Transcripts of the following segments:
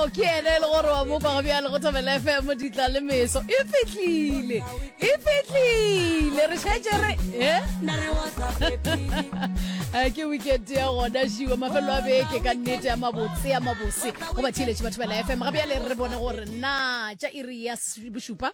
ke ene e le gore wa mokwa go bjale go thobela fm ditla le meso e fitlhile e fitlhile re šetse re e Eh, ke weekend ya gona šiwa mafelo a beke ka nnete ya mabotse ya mabose go ba theletše batho ba la fm gape ya le re bone gore na tša iri ya bošupa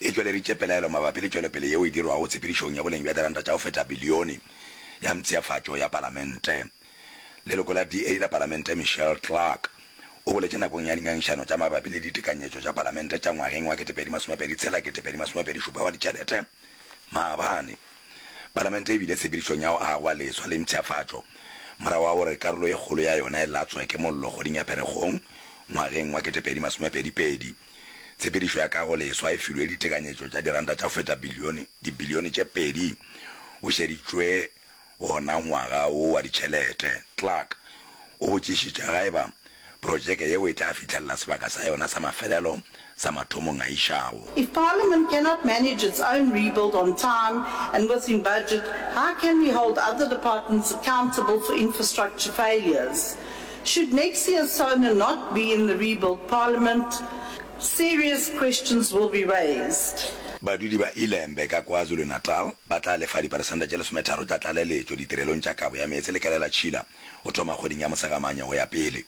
e tšweleditše pelaelo mabapi le tšwelopele yeo e dirwago tshepedišong ya boleng bja diranta tša go feta bilione ya mpsheafatšo ya Palamente. Leloko la DA la Palamente Michelle Clark o boletše nakong ya dingangišano tša mabapi le ditekanyetšo tša Palamente tša ngwageng wa 2026-2027 wa ditšhelete maabane Palamente e bile tshepedišong ya go agwa leswa le mpsheafatšo morago ga gore karolo e kgolo ya yona e latswe ke mollo kgweding ya Pherekgong ngwageng wa 2022. Tshepedišo ya kago leswa e filwe ditekanyetšo tša diranta tša go feta bilione dibilione tše pedi o šeditšwe wona ngwaga wo wa ditšhelete. Clark o botšišitše ga eba protšeke yeo e tla fihlelela sebaka sa yona sa mafelelo sa mathomong a išago. If Parliament cannot manage its own rebuild on time and within budget, how can we hold other departments accountable for infrastructure failures? Should next year Sona not be in the rebuilt parliament, serious questions will be raised. Badudi ba Ilembe ka KwaZulu-Natal ba tla lefa diperesente tše lesometharo tša tlaleletšo ditirelong tša kabo ya meetse le kelelatšhila go thoma kgweding ya Mosegamanya go ya pele.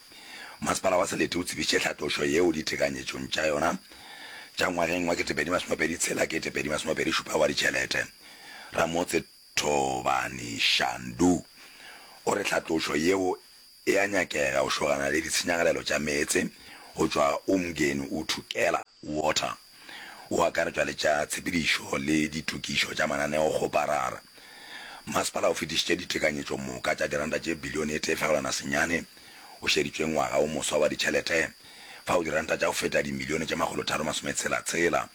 Masepala wa Selete o tsebišitše tlhatlošo yeo ditekanyetšong tša yona tša ngwageng wa 2026-2027 wa ditšhelete. Ramotse. Thobani Shandu o re tlhatlošo yeo e a nyakega go šogana le ditshenyagalelo tša meetse go tšwa Umgeni Uthukela Water, go akaretšwa le tša tshepedišo le ditokišo tša mananeo go Parara. Masepala o fetišitše ditekanyetšo moka tša diranta tše bilione e tee fegelwana senyane o šeditšweng ngwaga wo moswa wa ditšhelete, fao diranta tša go feta dimilione tše makgolo tharo masome tshela tshela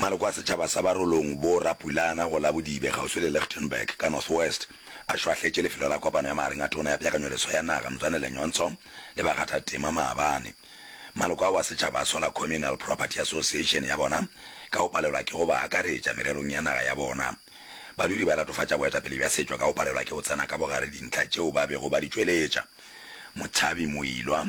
Maloko a setšhaba sa Barolong bo rapulana go Labodibe kgauswi le Lichtenburg ka North West a šwahletše lefelo la kopano ya magareng a Tona ya Peakanyoleso ya Naga Mzwanele Nyhontso le bakgathatema maabane. Maloko ao a setšhaba a sola Communal Property Association ya bona ka go palelwa ke go ba akaretša mererong ya naga ya bona. Badudi ba latofatša boetapele bja setšwa ka go palelwa ke go tsena ka bogare dintlha tšeo ba bego ba di tšweletša. Motšhabi Moilwa.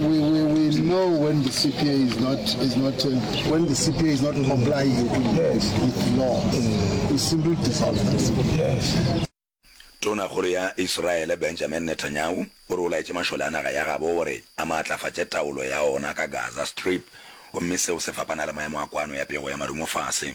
we, we, we know when the CPA is not is not uh, when the CPA is not complying yes. with the law. Mm. We simply dissolve that. Yes. tona kgolo ya israele benjamin netanyahu o re o laetse mašole a naga ya gabo gore a maatlafatše taolo ya ona ka gaza strip gomme seo se fapana le maemo a kwano ya pego ya marumo fase